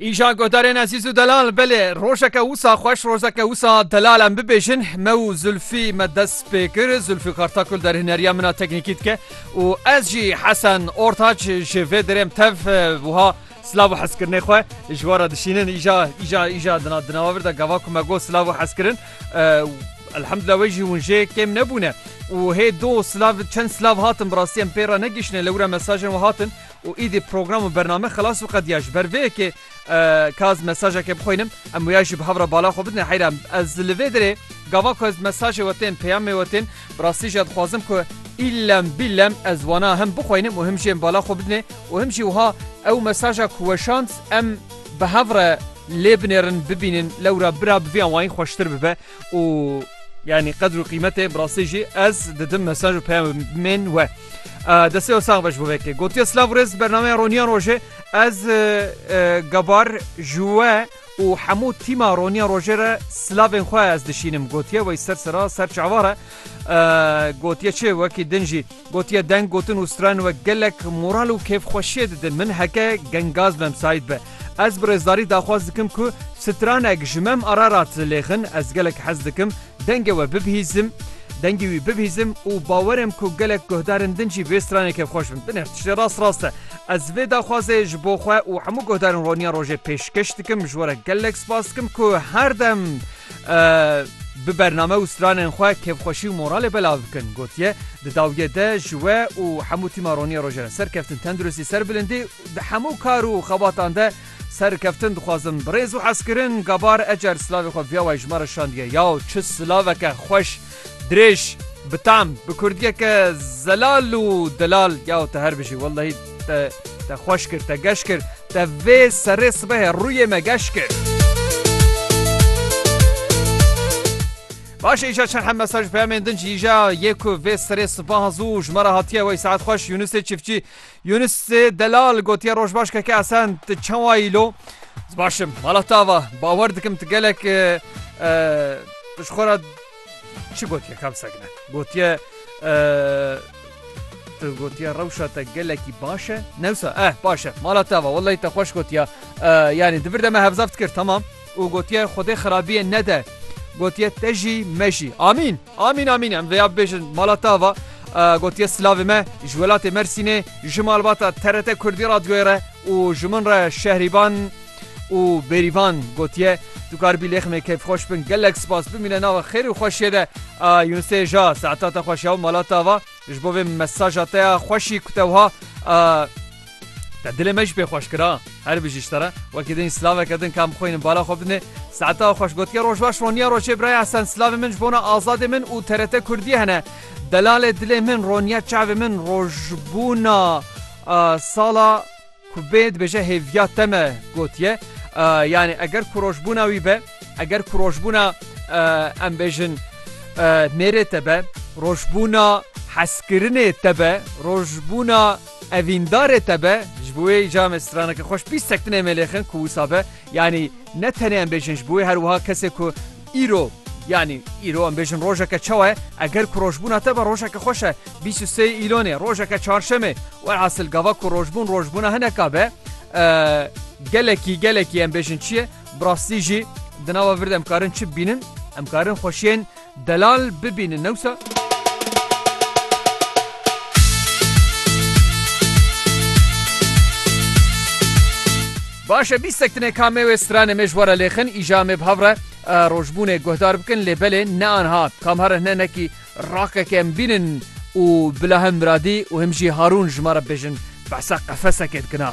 Îja godarên ezîz û delal belê rojeke wisa xweş rojeke wisa delal em bibêjin me û Zulfî me dest pê kir Zulfî Kartakul derhineriya min a teknîkî dike û ez jî Hesen Ortaç ji vê dirêm tev wiha silav û hezkirinê xwe ji wara dişînin îja îja îja dina dinawa vir de gava ku me got silav û hezkirin Elhamdulillah wê jî hûn jê kêm nebûne û hê do silav çend silav hatin bi rastî em pê re negihişne lewra mesajên we hatin û îdî program û bername xilas û qediya ji ber vê yekê ka ez mesajekê bixwînim em wêya jî bi hev re bala xwe bidin heyra ez li vê dirê gava ku ez mesajê we tên peyamê we tên bi rastî jî dixwazim ku îllem bîllem ez wana him bixwînim û him jî em bala xwe bidinê û him jî wiha ew mesaja ku weşand em bi hev re lê binêrin bibînin lewra bira bi vê awayî xweştir bibe. û yanî qedr û qîmetê bi rastî jî ez didim mesaj û peyamên we. Destê we sax be ji bo vekê. Gotiye silav rêz bernameya roniya rojê ez gebar ji we û hemû tîma roniya rojê re silavên xwe ez dişînim gotiye wey ser sera ser çavare gotiye çê wekî din jî. Gotiye deng gotin û stren wek gelek moral û kêfxweşiyê didin min heke gengaz memsayîd be. Ez bi rêzdarî daxwaz dikim ku stranek ji mem Ararat lêxin ez gelek hez dikim dengê we bibihîzim dengê wî bibihîzim û bawerim ku gelek guhdarên din jî vê stranê kêfxweş bin. Binêr tiştê rast rast e. Ez vê daxwazê ji bo xwe û hemû guhdarên Roniya Rojê pêşkeş dikim ji we re gelek spas dikim ku her dem bi bername û stranên xwe kêfxweşî û moralê belav bikin, gotiye, Di dawiyê de ji we û hemû tîma Ronîyê Rojê re serkeftin, tenduristî, serbilindî di hemû kar û xebatan de serkeftin dixwazim. Bi rêz û hezkirin, Gabar Ecer silavê xwe viya wayî ji me re şandiye. Yaw çi silaveke xweş! Dirêj, bi tam, bi kurdiyeke zelal û delal yaw te her bijî wellehî te te xweş kir te geş kir te vê serê sibehê rûyê me geş kir. Başê îja çerhe mesaj peyamên din jî îja yê ku vê serê sibaha zû ji me re hatiye wey saet xweş Yunusê çiftçî Yûnis Delal gotiye Rojbaş keke Esen tu çawa yî lo? Ez baş im. Vala tava bawer dikim tu gelek tu ji xwe re çi gotiye ka bisekine. Gotiye tu gotiye rewşa te gelekî baş e newsa eh baş e mala te va wellahî te xweş gotiya yanî di vir de me hevzav dikir tamam û gotiye xwedê xirabiyê nede gotiye te jî me jî amîn Amîn amîn em vêya bibêjin mala te ava gotiye silavê me ji welatê Mersînê ji malbata TRT Kurdî radyoyê re û ji min re şehrîban û bêrîvan gotiye tu karibî lêx me keyfxweş bin gelek spas bimîne nava xêr û xweşiyê de Yunusê ja saetata xweş ya û mala te ava Ji bo vê mesaja te ya xweşî ku te wiha te dilê me jî pê xweş kira her bijî ji te re wekî din silaveke din kam xwînin bala xwe bidinê saeta xweş gotiye roj baş roniya roçê biraya sen silavê min ji bona azadê min û terete kurdî hene delalê dilê min roniya çavê min rojbûna sala Ku bê dibêje hêviya te me gotiye yanî eger ku rojbûna wî be eger ku rojbûna em bêjin mêrê te be rojbûna heskirinê te be rojbûna evîndarê te be ji bo wê îca me straneke xweş bîst sektinê me lêxin ku wisa be yanî ne tenê em bêjin ji bo wê her wiha kesê ku Îro, yanî îro em bêjin rojeke çawa ye, eger ku rojbûna te be rojeke xweş e, bîst û sê Îlonê, rojeke çarşemê, welhasil gava ku rojbûn rojbûna hineka be, gelekî gelekî em bêjin çi ye, bi rastî jî di nava vir de em karin çi bibînin? Em karin xweşiyên delal bibînin ne wisa? Baş e bîstek tine ka me wê stranê me ji we re lêxin, îja me bi hev re rojbûnê guhdar bikin lê belê ne anha. Kam here hine nekî rakeke em bînin û bila him Miradî û him jî Harûn ji me re bibêjin behsa qefeseke dikina.